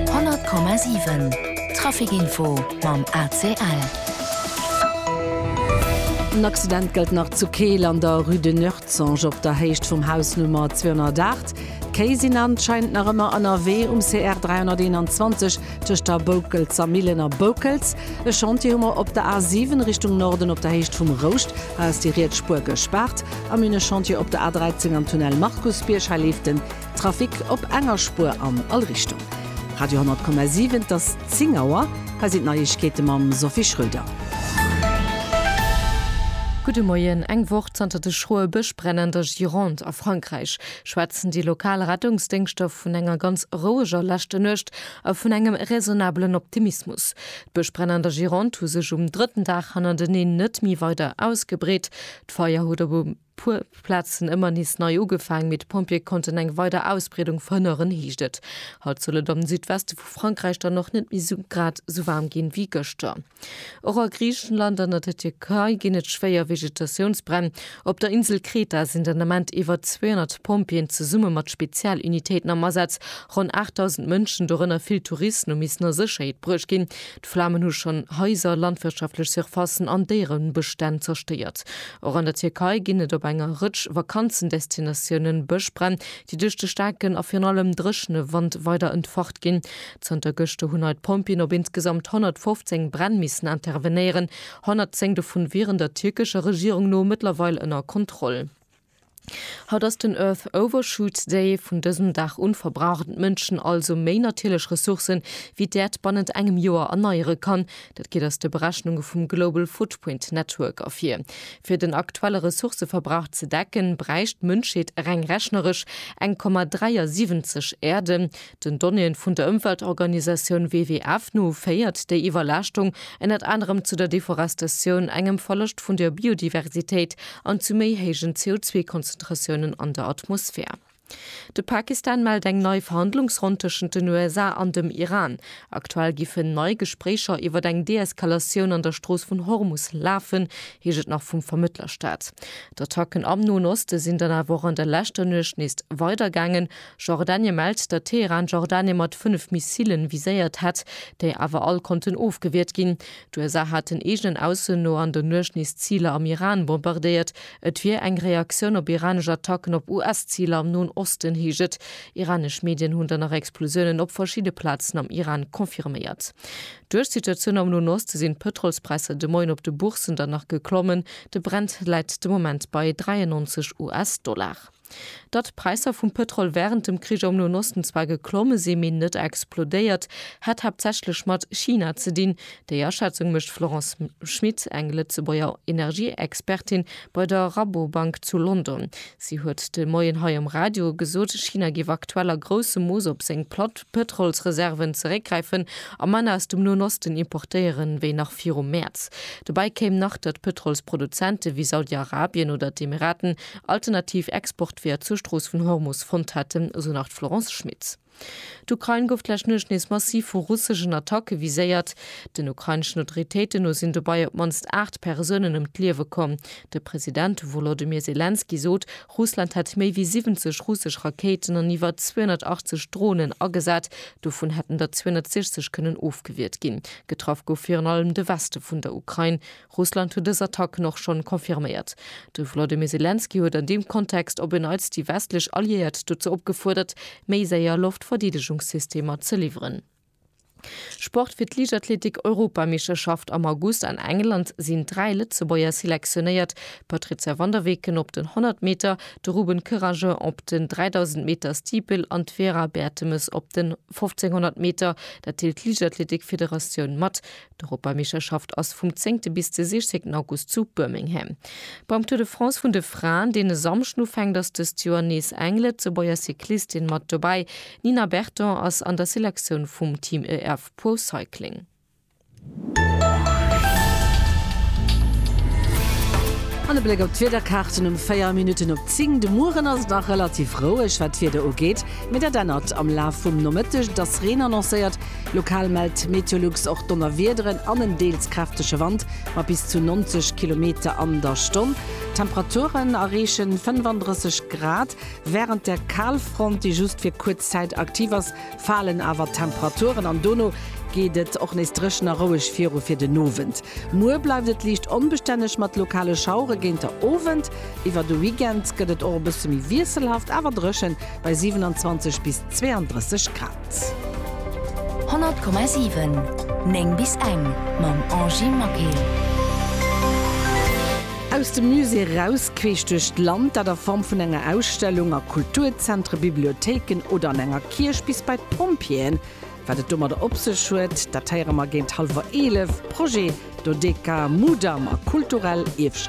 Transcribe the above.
100,7 Traficinfo mam ACL. En Accident gëllt nach zu Keel an der Rue de Nuertzange op der Héicht vum Haus Nummer 208. D'Kéi sinn anscheinend nach ëmmer ënnerwee um CR 321 tëscht der Boukelser Millen a Boukels. E Chantier hu mer op der A 7 Richtung Norden op der Héicht vum Rouscht. Hei ass déi riets Spuer gespaart. A mir hunn e Chantier op der A 13 am Tunnel Markusbierg. Hei leeft den. Trafic op enger Spuer an all Richtung. Radio 10,7, et ass 10 Auer. Hei sinn d'Neiegkeete mam Sophie Schröder. Gudde Moien. Eng Woch zanter de schroe Bëschbränn an der Gironde a Frankräich schwätzen déi lokal Rettungsdéngschter vun enger ganz roueger leschter Nuecht a vun engem raisonnabelen Optimismus. D'Bëschbränn an der Gironde hu sech um drëtten Dag hannerteneen net méi weider ausgebreet. D'Feier huet op e. Puer Platzen ëmmer nees nei ugefaang, mee d'Pompjee konnten eng weider Ausbreedung verhënneren, heescht et. Haut soll et am Südweste vu Frankräich dann och net méi sou grad sou waarm ginn, wéi gëschter. Och a Griichenland an an der Tierkei ginn et schwéier Vegetatiounsbränn. Op der Insel Kreta sinn den Ament iwwer 200 Pompjeeën zesumme mat Spezialunitéiten am Asaz. Ronn 8.000 Mënschen, dorënner vill Touristen, hu missen a Sécherheet bruecht ginn. D'Flamen hu schonn Haiser, landwirtschaftlech Surfacen an Déierebestänn zerstéiert. Och an der Tierkei ginn et op enger Rëtsch Vakanzendestinatioune Bëschbränn, déi duerch de staarken a virun allem dréchene Wand weider entfacht ginn. Zanter gëschter hunn hei d'Pompjeeën op insgesamt 115 Bränn missen intervenéieren, 110 dovun wieren der tierkescher Regierung no mëttlerweil ënner Kontroll. Haut ass den Earth Overshoot Day. Vun dësem Dag un verbrauchen d'Mënschen also méi natierlech Ressourcen, wéi d'Äerd bannent engem Joer erneiere kann. Dat geet aus de Berechnunge vum Global Footprint Network ervir. Fir den aktuelle Ressourcëverbrauch ze decken, bräicht d'Mënschheet reng rechneresch 1,73 Äerden. Den Donnéeën vun der Ëmweltorganisatioun WWF no féiert déi Iwwerlaaschtung ënnert anerem zu der Deforestatioun, engem Verloscht vun der Biodiversitéit an zu méi héijen CO2-Konzentratiounen an der Atmosphär. De Pakistan mellt eng nei Verhandlungsronn tëschent den USA an dem Iran. Aktuell giffen nei Gespréicher iwwert eng Deeskalatioun an der Strooss vun Hormus lafen, heescht et nach vum Vermëttlerstat. D'Attacken am Noen Oste sinn dann awer och an der leschter Nuecht nees weidergaangen. Jordanie mellt, datt Teheran Jordanie mat fënnef Missilen viséiert hätt, déi awer all konnten ofgewiert ginn. D'USA haten eegenen Aussen no an der Nuecht nees Ziler am Iran bombardéiert. Et wier eng Reaktioun op iranesch Attacken op US-Ziler am Noen Osten, heescht et. Iranesch Medien hunn dann nach Explosiounen op verschidde Plazen am Iran confirméiert. Duerch d'Situatioun am Noen Oste sinn d'Pëtrolspräisser de Moien op de Bourssen dann nach geklommen. De Brent läit de Moment bei 93 US-Dollar. Datt d'Präisser vum Pëtrol wärend dem Krich am Noen Osten zwar geklomme si mee net explodéiert, hätt haaptsächlech mat China ze dinn. Déi Aschätzung mécht d'Florence Schmit, eng Lëtzebuerger Energieexpertin bei der Rabobank zu London. Si huet de Moien hei um Radio gesot, China géif aktuell a groussem Mooss op seng Pëtrolsreserven zeréckgräifen a manner aus dem Noen Osten importéieren, wéi nach viru Mäerz. Dobäi kéim nach, datt Pëtrolsproduzente wéi Saudi-Arabien oder d'Emiraten alternativ Exportweeër zur Strooss vun Hormus fonnt hätten, esou nach d'Florence Schmit. D'Ukrain gouf d'lescht Nuecht nees massiv vu russeschen Attacke viséiert. Den ukraineschen Autoritéiten no sinn dobei op d'mannst 8 Persounen ëm d'Liewe komm. De President Wolodymyr Selenskyj sot, Russland hätt méi wéi 70 russesch Rakéiten an iwwer 280 Dronen agesat, dovun hätten der 260 kënnen ofgewiert ginn. Getraff gouf virun allem de Weste vun der Ukrain. Russland huet dës Attacken och schonn confirméiert. De Volodymyr Selenskyj huet an deem Kontext op en Neits déi westlech Alliéiert dozou opgefuerdert, méi séier Loftverdeedegungssystemer ze liwweren. Sport, Fir d'Liichtathletik-Europameeschterschaft am August an England sinn dräi Lëtzebuerger selektionéiert, d'Patrizia van der Weken op den 100 Meter, de Ruben Kerragen op den 3000 Meter Steeple an d'Vera Bertemes op den 1500 Meter. Dat deelt d'Liichtathletik-Federatioun mat. D'Europameeschterschaft ass vum zéngte bis de sichzéngten August zu Birmingham. Beim Tour de France vun de Fraen, deen e Samschden ufänkt, ass dëst Joer nees eng Lëtzebuerger Cyclistin mat dobäi. D'Nina Berton ass an der Selektioun vum Team EF Pro Cycling. An e Bléck op d'Wiederkaarten um 4 Minutten op 10. De Mueren ass et nach relativ roueg, wat d'Wieder ugeet, mee dat ännert am Laf vum Nomëtteg. Et ass Reen annoncéiert, Lokal mellt Meteolux och Donnerwiederen an en deels kräftege Wand mat bis zu 90 Kilometer an der Stonn. Temperaturen erreeche 35 Grad. Wärend der Kalfront, déi just fir kuerz Zäit aktiv ass, falen awer d'Temperaturen an dono geet et och nees dréchen a roueg viru fir den Owend. Muer bleift et liicht onbestänneg mat lokale Schauere géint der Owend. Iwwer de Weekend gëtt et och e bësse méi wiesselhaft awer dréchen bei 27 bis 32 Grad. 100,7, 9 bis eng mam Angie Maquil. Aus dem Musée eraus, queesch duerch d'Land, dat a Form vun enger Ausstellung, a Kulturzentre, Bibliothéiken oder an enger Kierch, bis bei d'Pompjeeën. Wat et domadder op sech huet, dat héiere mer géint hallwer 11. Projet, Dodeca, Mudam a kulturell Ierfschaft.